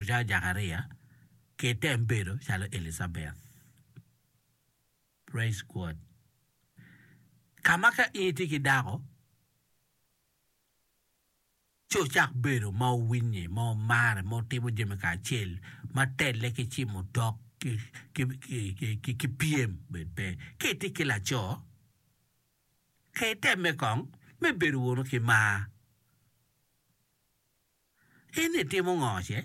Ca Jakaria ki tem bedo calo Elicabeth. Praise God. Ka ma ka in itye ki dako, ci ocak bedo ma owinye, ma omare, ma otimo jami kacel, ma telle ki cimo tok, ki, ki, ki, ki, ki, ki pyem bene pe. Ka itye ki laco, ka itemme kong me bedo wunu ki mar. In itimo ngo ce?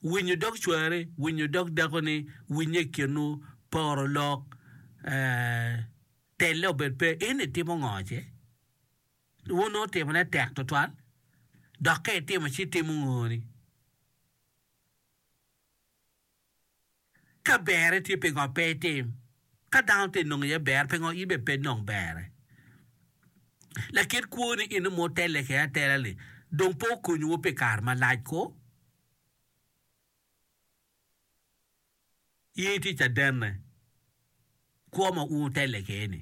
Winyo dog cwari, winyo dog dakoni, winye i kinwu, poro lok, telle obed pe, in itimo ngo ce? Wunongo timone tek twatwal, dok ka itimo ci itimo ngo ni? Ka berre tye pingo pe itim? Ka dano te nongo iye ber pingo in bene pe nong berre? Lakit kwo ni eno ma otelle kede atela ni dong pe okonyowu pi kare malac ko? In itye cadenne kwo ma un wutelle kede ni?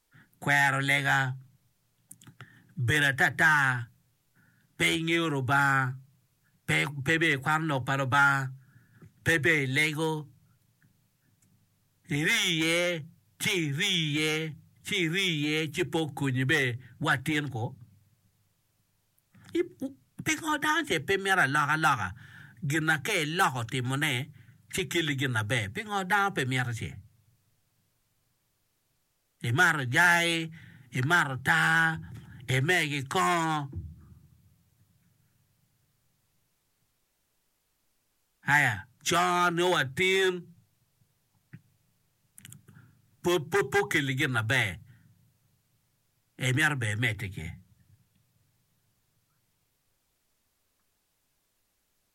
kwero lega, bedo atata, pe ingeyo Lubanga, pe pe ibedo i kwan lok pa Lubanga, pe ibedo i lego, iri iye ci iri iye ci iri iye ci pe okonyi bene wa atin kwo. Pingo dano ce pe mito alokaloka gin ma ka iloko timone ci kelli gin maber pingo dano pe mito ce? imato jai, imato taa, imer ki kongo, aya con nongo watin pe okelli gin maber imito bene imedde ki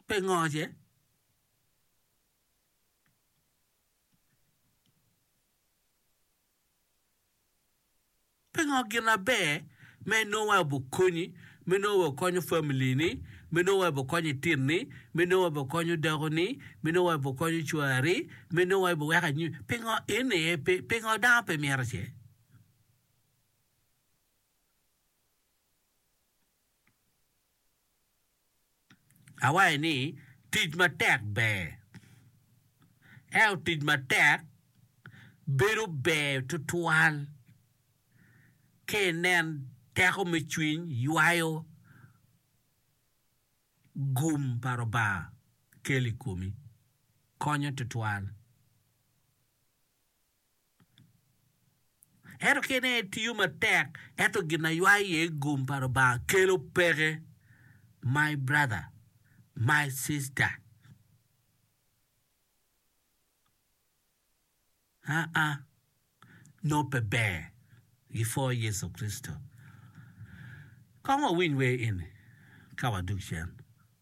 pingo ce? Pingo gin aber ma inongo waco bikonyi me nongo wa ikonyo familini, me nongo wa ibikonyo itinni, me nongo wa ibikonyo dakoni, me nongo wa ibikonyo cwari, me nongo wa ibiweko anyim? Pingo en aye pingo dano pe mito ce? Awaci ni, Tic matek ber. Ento tic matek bedo ber tutwal ka inen teko me cwiny ywayo gum pa Lubanga kelo i komi. Konyo tutwal. Ento kit nen aye tiyo matek ento gin a ywayo iye gum pa Lubanga kelo peke my brother my sister aa noo pe ber gi pwo Yecu Kricito kong wawiny wer eni ka wadok cen.